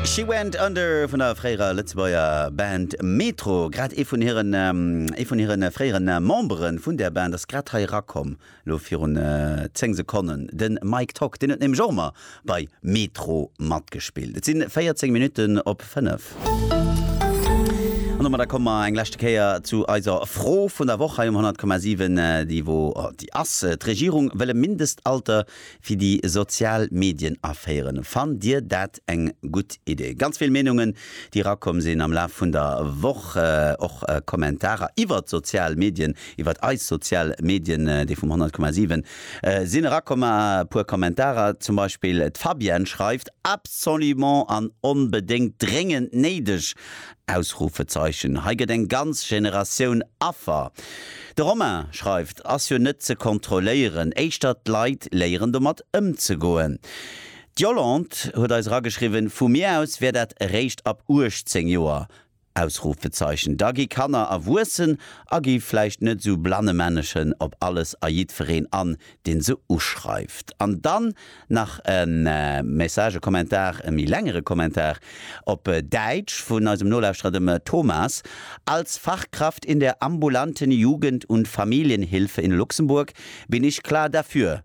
She Went Under vun der fréierer Lëtzebuerger Band Metro. Grad ee vun hiren, ee vun hiren fréieren Memberen vun där Band ass grad hei erakomm, elo virun 10 Sekonnen, den Mike Tock. Deen huet nämlech och emmer Bei Metro matgespillt. Et sinn 14 Minutten op 5. An domat da komme mer eng leschte Kéier zu eiser Fro vun der Woch hei um 100,7. Déi wo déi ass, D'Regierung wëll e Mindestalter fir déi sozial Medien aféieren. Fannt Dir dat eng gutt Idee? Ganz vill Meenungen, déi erakomm sinn am Laf vun der Woch. Och Kommentarer iwwert d'sozial Medien, iwwert eis sozial Medien, déi vum 100,7. Sinn erakomma e puer Kommentarer, zum Beispill d'Fabienne schreift, Absolument an onbedéngt dréngend néideg! Ausrufezeichen Hei gëtt eng ganz Generatioun Affer. De Romain schreift, Ass jo net ze kontrolléieren, éischter d'Leit léieren domat ëmzegoen. D'Yolande huet eis erageschriwwen, Vu mir aus wär dat eréischt ab 18 Joer. Ausrufezeichen, da gi Kanner erwuessen a gi vläicht net sou Blannemännechen op alles a jiddwereen an, dee se uschreift. An dann nach e Message, e Kommentar, e méi längere Kommentar op Däitsch vun eisem Nolauschterer, dem Thomas, Als Fachkraft in der ambulanten Jugend und Familienhilfe in Luxemburg bin ich klar dafür,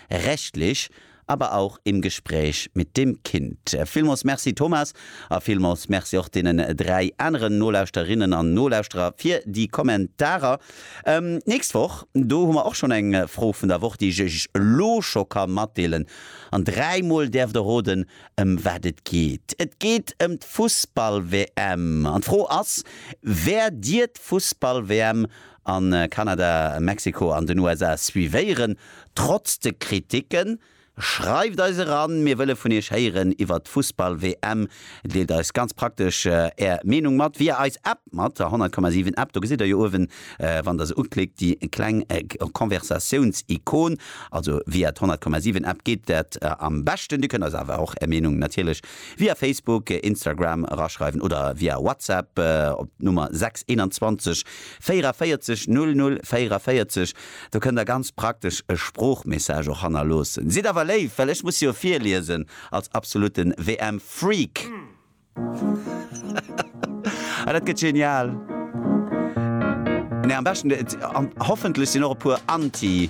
rechtlich, aber auch im Gespräch mit dem Kind. Villmols Merci Thomas a villmols Merci och deenen 3 aneren Nolauschterinnen an Nolauschterer fir déi Kommentarer. D'nächst Woch, do hu mer och schon eng Fro vun der Woch, déi ech iech elo scho ka matdeelen an dräimol däerft der roden, ëm wat et geet. Et geet ëm d'Fussball-WM an d'Fro ass, Wäert dir d'Fussball-WM A Kanada, Mexiko an den USA suivéieren trotz de Kriticken. Schreift eis eran, mir wëlle vun iech héieren iwwert d'Fussball-WM. Deelt eis ganz praktesch är Meenung mat via eis App mat der 100,7 App. Do gesitt der jo uewen, wann der se uklickt, déi kleng Konversatiouns-Ikon. Also via d'100,7 App geet dat am beschten. Dir kënnt eis awer och är Meenung natierlech via Facebook, Instagram eraschreiwen oder via WhatsApp op d'Nummer 6 21 44 00 44, do kënnt der ganz praktesch e Sproochmessage och hannerloossen. Sidd awer léif, well ech muss jo virliesen als absolute WM-Freak. Ah, dat gëtt genial! Nee, am beschten, hoffentlech sinn och e puer Anti.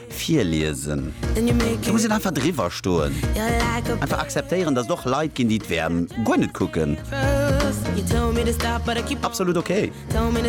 Virliesen. Do muss een einfach driwwer stoen. Einfach akzeptéieren, datt et och Leit ginn, déi d'WM guer net kucken. Absolut ok.